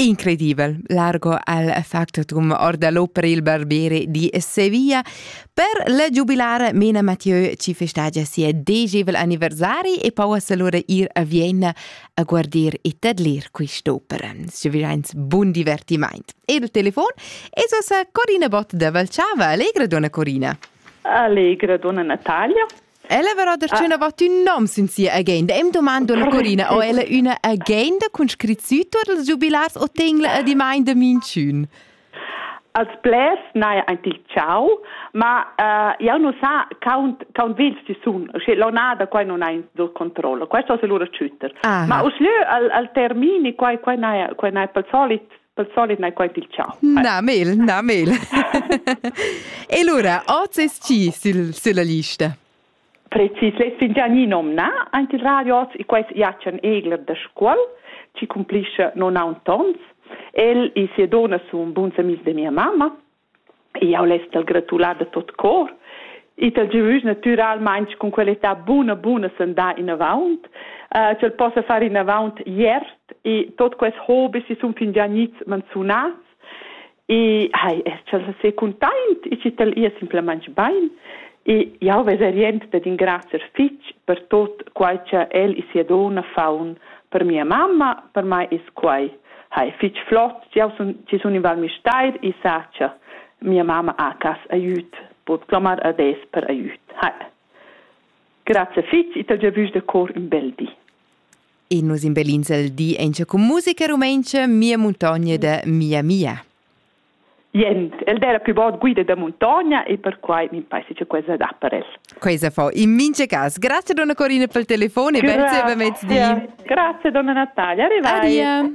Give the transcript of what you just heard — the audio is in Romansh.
Incredibel, largo al factotum orda lo per il barbiere di Sevilla per le giubilare Mena Mathieu ci festagia sia degevel anniversari e pauas allora ir a Vienna a guardir e tadlir quest'opera. Svivains bun divertiment. E il telefon è sosa Corina Bott da Valciava. Allegra, donna Corina. Allegra, donna Natalia. Ella verrà darchüna vattü nom sün sia agenda e'm domando la Corina o ella üna agenda cun scrit sü tuot ils giubilars o tegna adimaint da minchün. Als blers n'haja aint il ciao, ma uh, jau nu sa count, count vegls chi sun, sche l'onada quai non ha in dur controllo, questo se lura chütter. Ma uschlö al, al termini quai, quai n'haja quai n'ha pel solit pel solit n'hai quai pilchà. Na, mel, na, mel. e lura, oz es chi sil, sülla lista? Precis, l'es fingià gni nomnà aint il radio oz e quais Jacen Egler da Scuol, chi cumplischa non aunz tons. El e sia donna sun buns amis da mia mamma Jau less t'al gratular da tot cor e t'al giuvüsch natüralmaing cun quell'età buna buna sandà inavaunt, uh, ch'el possa far inavaunt iert e tot quels hobis chi sun fingià gnits manzunats e hai, er ch'el se cuntaint e chi t'al ia simplamaing bain e jau vesa rient dad ingrazcher fich per tot quai cha el e sia donna faun per mia mamma, per mai es quai Hai fich flot, jau sun, chi sun in Val Müstair, i sacha. Mia mamma ha cas aiüt, bod clomar ades per aiüt. Hai. Grazie fich, i t'ho già vus da cor ün bel di. E nus imbellins il di auncha cun musica rumaintscha Mia muntogna da Mia Mia. Jent, el era più bod guida da muntogna e perquai mi paisa che quella da per el. Questa fa in mince cas. Grazie donna Corina per il telefono e grazie per mezdi. Grazie donna Natalia. Arrivai. Adia.